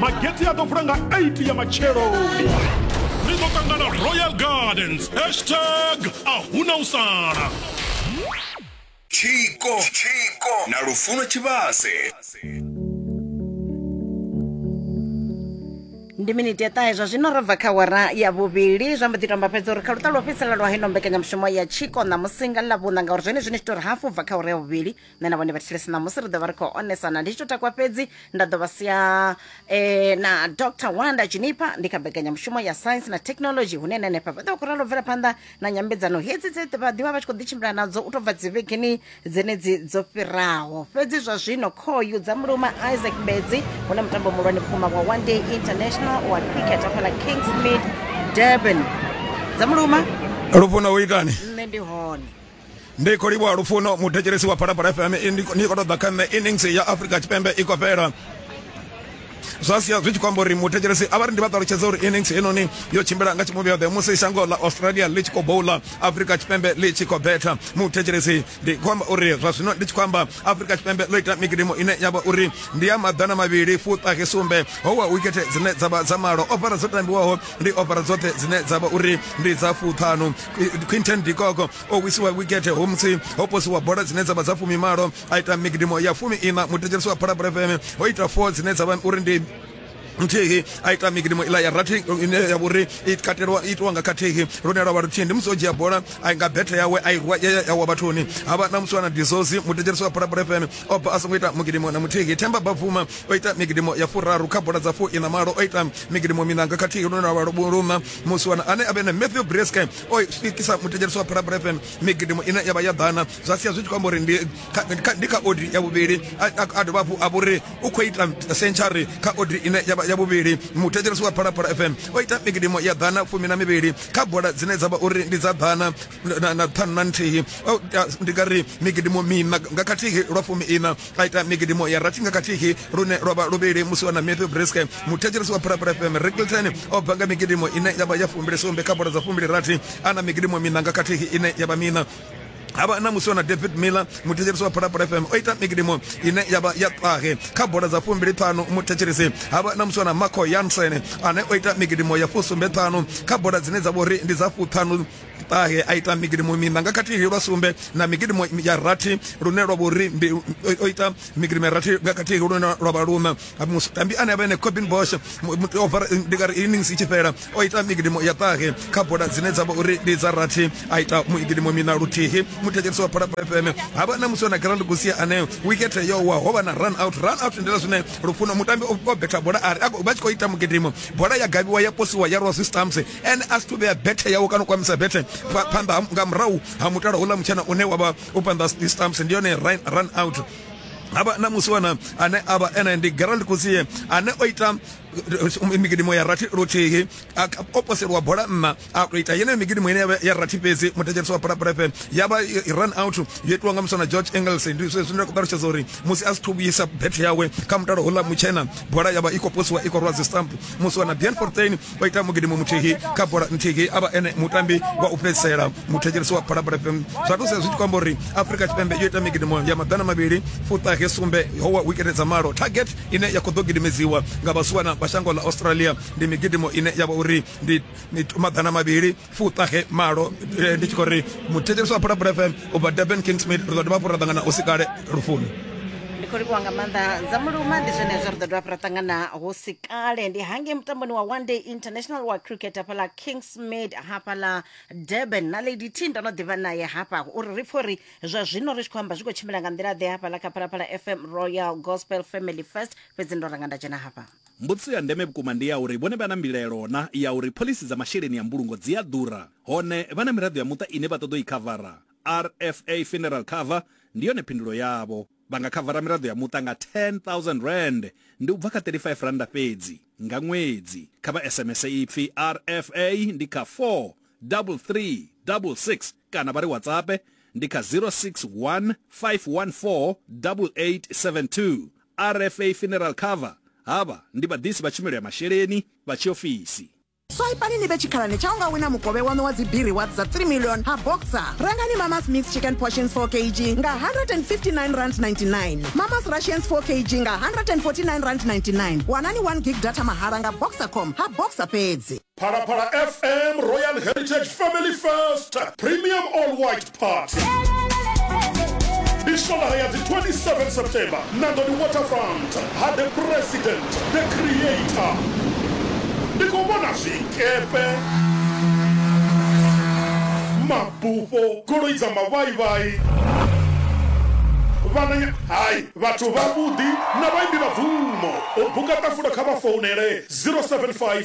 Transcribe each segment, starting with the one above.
mageti a ḓo vula nga 8 ya matshelo ri ḓo ṱangana royal gardens hashtag a huna u sala tshiko tshiko na lufuno tshivhase ndi miniti ya ṱahe zwa zwino ro bva kha wara ya vhuvhili zwa mbo ḓi tomba fhedza uri kha luṱa lwo fhedzisela lwa heno mbekanyamushumo ya tshiko ṋamusi nga ḽavhuṋa ngauri zwone zwine zwi tori hafu bva kha wara ya vhuvhili nṋe na vhone vhathetshelesi ṋamusi ri ḓo vha ri khou onesana ndi tshi to takwa fhedzi nda ḓo vha sia eh, na dr wanda juniper ndi kha mbekanyamushumo ya science na technology hune na henefha vha ḓo vha khou ralo bvela phanḓa na nyambedzano hedzi dze vha ḓivha vha tshi khou ḓitshimbila nadzo u tou bva dzivhegeni dzenedzi dzo fhiraho fhedzi zwa zwino khoyu dza muluma isaac bedzi hune mutambo muhulwane vhukuma wa one day international wa cricket afhala kingsmid durban dza muluma lufuna u itani nṋe ndi hone ndi khou livhuwa lufuno muthetshelesi wa phalaphala fm ni khou ṱoḓa kha nṋe innings ya afrika tshipembe i khou fhela zwa sia zwi tshi khou amba uri muthetshelesi a vha ri ndi vha ṱalutshedza uri innings heinoni yo tshimbila nga tshimuvhi yoṱhe musi shango ḽa australia ḽi tshi khou boula afrika tshipembe ḽi tshi khou betha muthetshelesi ndi khou amba uri zwa zwino ndi tshi khou amba afrika tshipembe ḽo ita mikidimo ine ya vha uri ndi ya maḓana mavhili fuṱahe sumbe ho wa wikethe dzine dza vha dza malo ofara dzo tambiwaho ndi ofara dzoṱhe dzine dza vha uri ndi dza fuṱhanu quinton dikoko o wisiwa wikete homutsi ho posiwa bola dzine dza vha dza fumi malo a ita migidimo ya fumi ina muthetsheliso wa phalabula fm ho ita four dzine dza vha uri ndi nthihi a ita migidimo ila ya rathi ine ya vhori i katelwa itiwa nga khathihi lune lwa vha luthihi ndi musi o dzhia bola a nga bethe yawe a irwa ya wa vhathuni havha na musi wana dizozi muthetsheliso wa phalabula fm o bva a songo ita mugidimo na muthihi themba bavuma o ita migidimo ya furaru kha bola dza fu ina malo o ita migidimo minanga khathihi lune lwa vha luna musiwana ane a vhe na matthew brescam o swikisa muthetshelesi wa phalabra fm migidimo ine ya vha ya ḓana zwa sia zwi tshi khou amba uri ndi kha odi ya vhuvhili a dovha hafhu a vhori u khou ita century kha odi ine ya vha ya vhuvhili muthetshelesi wa phalaphala fm o ita migidimo ya ḓana fumi na mivhili kha bola dzine dza vha uri ndi dza ḓana na ṱhanu na nthihi ndi nga ri migidimo mina nga khathihi lwa fumi ina ra ita migidimo ya rathi nga kathihi lune lwa vha luvhili musi wa na matthew briske muthetshelesi wa phalaphala fm rickleton o bva nga migidimo ine ya vha ya fumbili sumbe kha bola dza fumbili rathi a na migidimo mina nga kathihi ine ya vha mina havha na musi wana david miller muthetshelesi wa phalaphala fm o ita migidimo ine yavha ya ṱahe kha bola dza fumbili ṱhanu muthetshelesi havha na musi wana marco yansen ane o ita migidimo ya fusumbe ṱhanu kha bola dzine dza vha uri ndi dza fuṱhanu ṱahe a ita migidimo mina nga khathihi lwa sumbe na migidimo ya rathi lune lwa vhori ndi o ita migidimo ya rathi nga khathihi lune lwa vha luna mutambi ane avha ene cobin bosh over ndi nga ri innings i tshi fhela o ita migidimo ya ṱahe kha bola dzine dza vha uri ndi dza rathi a ita migidimo mina luthihi muthetshelisi wa phalaphala fm ha vha na musi wa na grand gusia ane wikethe yo wa ho vha na run out run out ndila zwine lufuno mutambi o betha bola ari vha tshi khou ita mugidimo bola ya gaviwa ya posiwa ya rwa zwi stamps ene a si to vhea bethe yawe kana u kwamisa bethe pha- phanḓa ha- nga murahu ha mutala houḽa mutshena une wa vha u phanḓa ha stamps ndi yone run, run out havha na musiwana ane avha ene ndi gerald kusie ane o ita eh, migidimo ya rathi luthihi a- a- o poselwa bola nna a to ita yeneyo migidimo ine yavha ya rathi fhedzi muthetsheliso wa pulapulepe ya vha i- i run out yo itiwa nga musiwana george engels ndi zwe zwine nda khou ṱalutshedza uri musi a si thu vhuyisa bethe yawe kha mutalo houḽa mutshena bola ya vha i khou posiwa i khou rwa dzi stamp musiwana bian fortain vha ita mugidimo muthihi kha bola nthihi a vha ene mutambi wa u fhedzisela muthetshelesi wa phalaphala fm zwa thusa zwi tshi khou amba uri afrika tshipembe yo ita migidimo ya maḓana mavhili fuṱahe sumbe howa wikete dza malo target ine ya khou ḓo gidimedziwa nga vhasuwana vha shango ḽa australia ndi migidimo ine ya vha uri ndi maḓana mavhili fuṱahe malo eh, ndi tshi khou ri muthetshelesi wa phalaphala fm u bva durban king smith ri ḓo dovha hafhu ra ṱangana u si kale lufuni ndi khou livhuwa nga maanḓa dza muluma ndi zwenezwo ri ḓo dovha hafhu ra ṱangana hu si kale ndi hange mutamboni wa one day international wa cricket hafhaḽa kingsmid hafhaḽa durban na lady t ndo no ḓivha naye hafha uri ri pfhe uri zwa zwino ri tshi khou amba zwi khou tshimbila nga nḓila ḓe hafhaḽa kha phalaphala fm royal gospel family first fhedzi ndo ranga nda dzhena hafha Mbudziso ya ndeme vhukuma ndi ya uri vhone vha na mbilaelo na ya uri phoḽisi dza masheleni a mbulungo dzi a ḓura, hone vha na miraḓo ya muṱa ine vha ṱoḓa u i khavara. RFA Funeral Cover ndi yone phindulo yavho. Vha nga khavara miraḓo ya muṱa nga R10,000, ndi u bva kha R35 fhedzi, nga ṅwedzi. Kha vha SMS ipfi RFA ndi kha 43366 kana vha ri WhatsAppe ndi kha 0615148872. RFA Funeral Cover havha ndi vhaḓisi vha tshumelo ya masheleni vha tshiofisi. Swaipani ni vhe tshikhalani tsha u nga wina mukovhe waṋu wa dzi-B Rewards dza 3 million ha Boxer. Rengani Mama's Mixed Chicken Portions 4 kg nga R159.99, Mama's Rations 4 kg nga R149.99. Wanani 1 gig data mahala nga Boxercom ha Boxer fhedzi. Phalaphala FM Royal Heritage Family First Premium All White Party ndi swalaha ya dzi 27 september nandoni waterfront ha the president the creator ndi khou vhona zwikepe mabufho goloi dza mavhaivhai vhananya hai vhathu vhavhuḓi na vhaimbi vha bvumo u buka ṱafula kha vha founele 075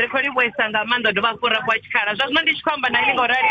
ri khou livhuesa nga maanḓa dovha hafhu ra fhiwa tshikhala zwa zwino ndi tshi khou amba na ini ngaurali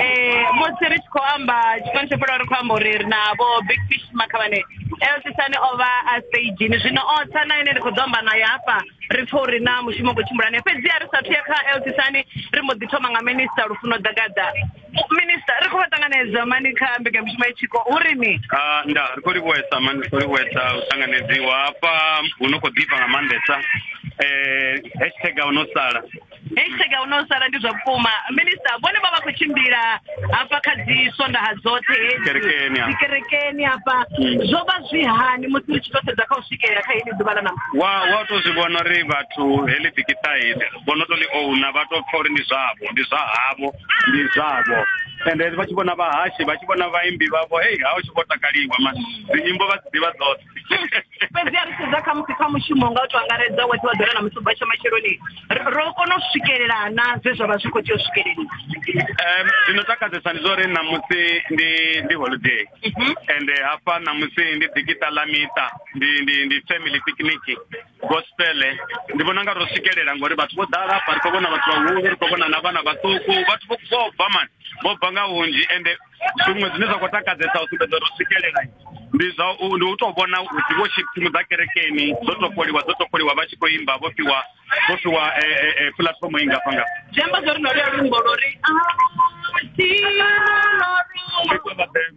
um musi ri tshi khou amba tshifani tsho fhelaho ri khou amba uri ri na vho big fish makhavhane elsisani o vha a stagini zwino o tsa na ine ri khou ḓo amba nayo hafha ri pfha uri na mushumo khou tshimbulane fhedziha ri sathu ya kha elsisani ri mbo ḓi thoma nga minista lufuno ḓagaḓa minista ri khou vha ṱanganedza mani kha mbekanyamushumo ya tshiko hu ri ni ah, nda ri khou livhuwesa mani ri khou livhuwesa u ṱanganedziwa hafha hu no khou ḓifha nga maanḓesa um hashtag a u no sala hashtag a u no sala ndi zwa vhukuma minista vhone vha vha khou tshimbila hafha kha dzi swondaha dzoṱhe hedzikerekeni hafha hmm. zwo vha zwi hani musi ri tshi tou sedza kha u swikelela kha heli ḓuvha ḽa namusi wa wa tou zwi vhona uri vhathu heḽi dikiṱaili vho no tou ḽi ouna vha tou pfha uri ndi zwavho ndi zwa havho ndi zwavho ende vha tshi vhona vhahashi vha tshi vhona vhaimbi vhavho hei ha u tshi vho takaliwa ma dzinyimbo vha dzi ḓivha dzoṱhe fhedzi a ri sedza khamusi kha mushumo nga u to angaredza wa ḓiwa ḓora na musi ubva tsha matsheloni ro kona u swikelela na zwe zwa vha zwi khou tea u swikeleli um zwino takadzesa ndi zwa uri ṋamusi ndi ndi holiday mhm. ende hafha ṋamusi ndi dikita ḽa miṱa ndi ndi ndi family picnic gospel ndi vhona nga ro swikelela ngori vhathu vho ḓala hafha ri khou vhona vhathu vhahulu ri khou vhona na vhana vhaṱuku vhathu vho vho bva mani vho bva nga hunzhi ende zwiṅwe zwine zwa khou takadzesa u sumbedza ro swikelela ndi zwa u ndi u tou vhona uthi vho tshimu dza kerekeni dzo topoliwa dzo topoliwa vha tshi khou imba vho fhiwa vho fhiwa e, e, e, puḽatifomo i ngafha nga zwi amba zwo ri no ri a lumbo lwo ri a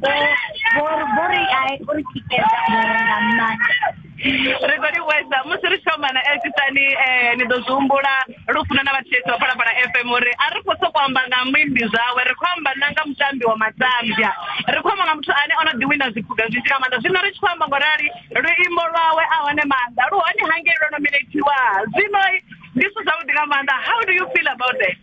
vho ri a uri tikedza vhore nga maanḓa ri khou livhuwesa musi ri thomana elsisani um eh, ni ḓo zwi humbula lufuno na vhathetshe vha phalaphala fm uri a ri khou sokou amba nga muimbi zwawe ri khou amba na nga mutambi wa matambya ri khou amba nga muthu ane o no ḓiwina zwiphuga zwinzhi nga maanḓa zwino ri tshi khou amba ngo rali luimbo lwawe a hone maanḓa lu hone hangei lwo nominatiwa zwino ndi zwithu zwavhuḓi nga maanḓa how do you feel about that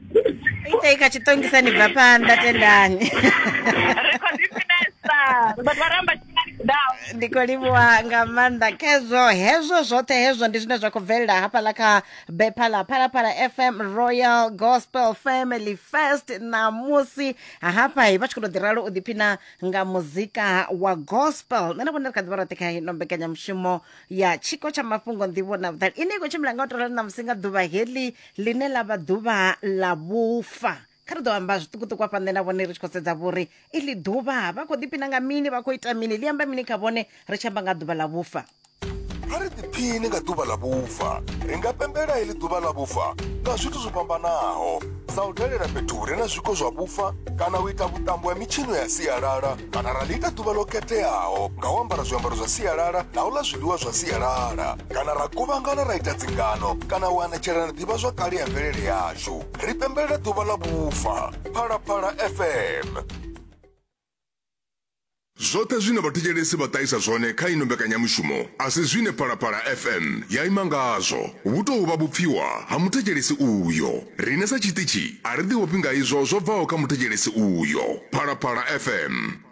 itaika chitongisa nibva panda tendani ndiko livhuwa nga maanḓa khezwo hezwo zwoṱhe hezwo ndi zwine zwa khou bvelela hafhaḽa kha bepa ḽa phalaphala fm royal gospel family first ṋamusi hafha vha tshi khou tou ḓi ralo u ḓiphina nga muzika wa gospel nṋe na vhone ri kha ḓivha roṱhe kha ino mbekanyamushumo ya tshiko tsha mafhungo nḓivho na vhuṱali ine i khou tshimbila nga u tou rali ṋamusi nga ḓuvha heḽi ḽine ḽa vha ḓuvha ḽa vhufa kha ri ḓo amba zwiṱukuṱuku afha nṋe na vhone ri tshi khou sedza vhori iḽi ḓuvha vha khou ḓiphina nga mini vha khou ita mini ḽi amba mini kha vhone ri tshi amba nga ḓuvha ḽa vhufa a ri ḓiphini nga ḓuvha ḽa vhufa ri nga pembela heḽi ḓuvha ḽa vhufa nga zwithu zwo fhambanaho sa u dalela fhethu hu re na zwiko zwa vhufa kana u ita vhuṱambo ha mitshino ya sialala kana ra ḽi ita ḓuvha ḽo khetheaho nga u ambara zwiambaro zwa sialala na u ḽa zwiḽiwa zwa sialala kana ra kuvhangana ra ita dzingano kana u anetshela na ḓivha zwakale ya mvelele yashu ri pembelela ḓuvha ḽa vhufa phalaphala fm zwoṱhe zwine vhathetshelesi vha ṱahisa zwone kha ino mbekanyamushumo a si zwine phalaphala fm ya ima ngazwo vhu tou vha vhupfiwa ha muthetshelesi uyo riṋe sa tshiṱitshi a ri ḓivhofhi nga izwo zwo bvaho kha muthetshelesi uyo phalaphala fm